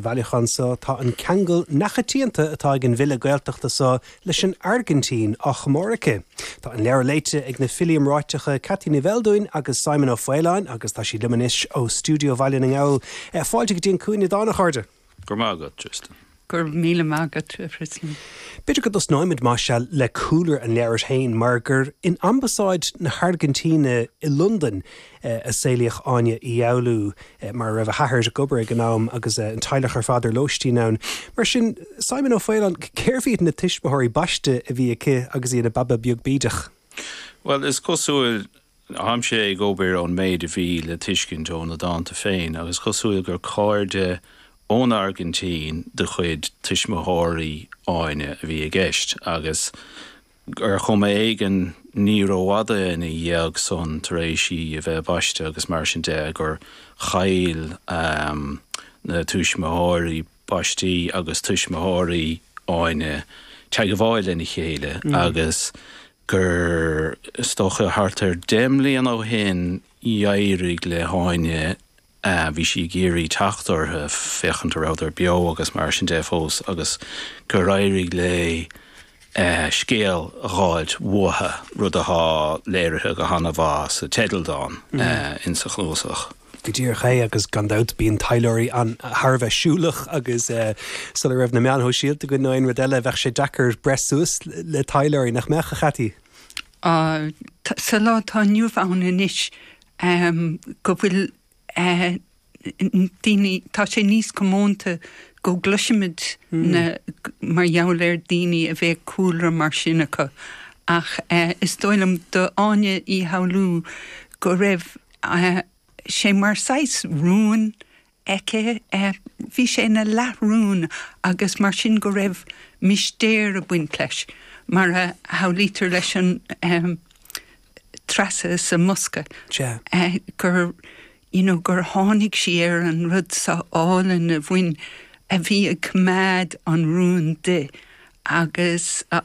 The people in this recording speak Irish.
bhailiúchán seo tá an ceangal neamhchoitianta atá ag an bhfile Gaeltachta seo leis an Airgintín á chomóradh aici. Tá an leabhar léite ag na filí iomráiteacha Ceaití Ní Bheildiúin agus Simon Ó Faoláin agus tá siad liom anois ó stiúideo Bhaile na nGall. Fáilte go dtí An Cúinne Dána, a chairde! Go raibh maith agat, Tristan. Go raibh míle maith agat, a Thristain. B'fhéidir go dtosnóimid, más ea, le cúlra an leabhair féin, mar gur in Ambasáid na hAirgintíne i Londain a saolaíodh Áine Uí Fhoghlú, mar a raibh a hathair ag obair ag an am agus an teaghlach ar fad ar lóistín ann. Mar sin, Simon Ó Faoláin, cérbh iad na tuismitheoirí baiste a bhí aici agus í ina baba beag bídeach? Bhuel, is cosúil, táimse ag obair ón méid a bhí le tuiscint ó na dánta féin agus is cosúil gur cairde ón Airgintín de chuid tuismitheoirí Áine a bhí i gceist agus, Ar chuma éigin ní rófhada ina dhiaidh san tar éis í a bheith baiste agus mar sin de gur chaill na tuismitheoirí baistí agus tuismitheoirí Áine teagmháil lena chéile agus gur dócha thart ar deich mbliana ó shin D'éirigh le hÁine, bhí sí ag iarraidh teacht orthu féachaint a rabhdar beo agus mar sin de fós agus gur éirigh léi scéal a dh'fháilt uathu, rud atá léirithe go han-mhaith sa teidealdán in sa chnuasach. Go díreach é agus gan dabht bíonn taidhleoirí thar a bheith siúlach agus sula raibh na meáin shóisialta againn nó aon rud eile bheadh sé deacair breith suas le taidhleoirí, nach mbeadh, a Cheaití? á, sa lá atá inniu ann anois, go bhfuil daoine, tá sé níos comónta go gcloisimid na, mar gheall ar daoine a bheith cúlra mar sin acu. Ach is dóigh liom do Áine Uí Fhoghlú go raibh sé mar saghas rún aici. Bhí sé ina leathrún agus mar sin go raibh mistéir ag baint leis, mar a shamhlaítear leis an treasa sa mbosca gur you know gur tháinig sí ar an rud seo álainn a bhain a bhí ag coimeád an rúin di agus.